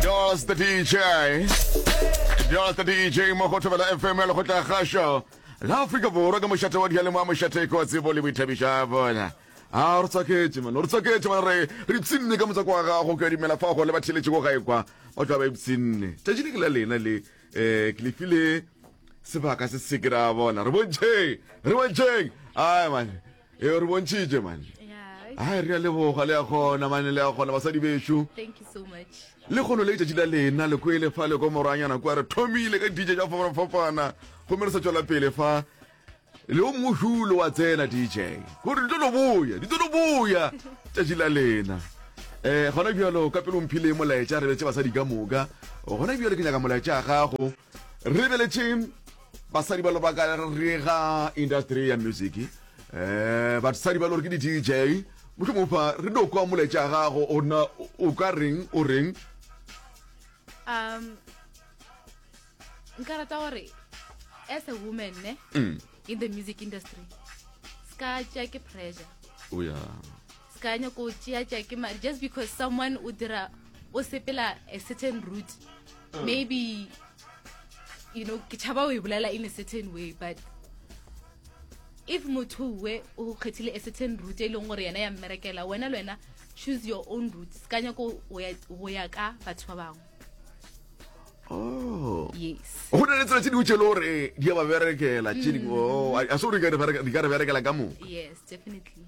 Dollars the DJ Dollars the DJ mo go thobela FM ya lekgotla kgašo la Afrika Borwa ka mošate wa dialemo a mošate ko tsebo le boithabiša bona a re tswaketse mane re tswaketse mane re re tsinne ka motswako wa gago ke dumela fa go le ba theletše ko gae kwa o tla ba e tsinne tšatši le ke la lena le um ke lefile sebaka se se ke ra bona re bontšheng re bontšheng ai mane e o re bontšhitše mane a re a leboga le a kgona mane le a kgona basadi bešo le kgono le letšatši la lena le kwele fa le ko moranyana kua re thomile ka dije ja fapana gomme re sa tšwela pele fa le o mongwe hulo wa tsena dj gore di tlo lo boya di tlo lo boya tšatši la lena um gona bjalo ka pelong phileng molaetša re betse basadi ka moka gona bjalo ke nyaka molaetša a gago re beletše basadi ba lobaka re ga industry ya music um basadi ba lore ke di-dj motlho mofa re no kwa moletša gago ona o ka reng o reng um nka rata gore as a woman ne mm. in the music industry ska tša ke pressure o oh, ya se ka nyako o tšeatša ke mare just because someone o dira o sepela a certain route mm. maybe you know ke tšhaba o e bolela in a certain way but if motho we o kgethile a certain route e leng gore yena ya mmerekela wena le wena choose your own route se ka nyako go ya ka batho ba bangwe oh. yes go na le tsela tse dingwe tse le gore di ya ba berekela tse dingwe mm. oh, a se gore di ka re berekela ka moka yes definitely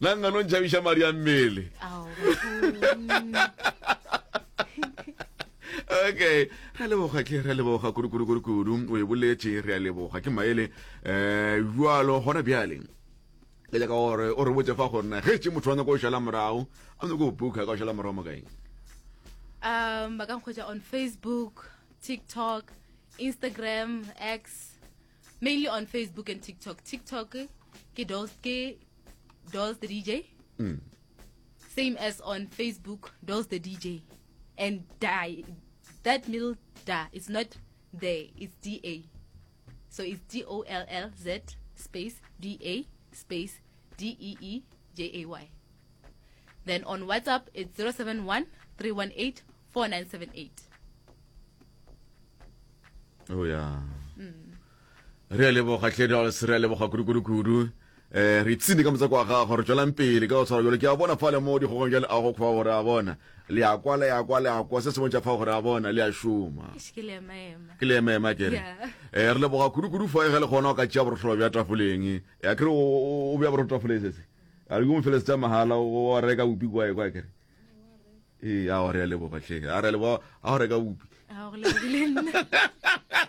nna nna no ntšhabiša madi a mmele okay re leboga ke re leboga kudukudukudukudu o e boletse re a leboga ke maele um eh, jalo gona bjaleng Ke nyaka gore o re botse fa gore na ge tše motho wa nyako o šala morago a nyako go booka ka o šala morago mo kaeng um ba ka nkgwetsa on facebook tiktok instagram x mainly on facebook and tiktok tiktok ke dolls ke dolls the dj mm. same as on facebook dolls the dj and die that middle da is not there it's da So it's D O L L Z space D A space D E E J A Y. Then on WhatsApp it's 071 318 4978. Oh yeah. Mm. Re a leboga tlhe re a leboga kudu kudu kudu. Eh, re tsine ka motseko wa gago re tswelang pele ka go tshwara jalo ke a bona fa le mo dikgogong jale a go kgwa gore a bona le a kwa le a kwa le a kwa se se bontšha fa gore a bona le a šoma ke le ema ema kere eh, re leboga kudu-kudu fa e ge le kgona o ka tšea borotlholo bja tafoleng ya kere o bja borotlo tafoleng sese a ke mo fele setsa mahala o a reka bopi kwa e kwa kere ee a gore ya leboga tlhe a re leboga a go reka bopi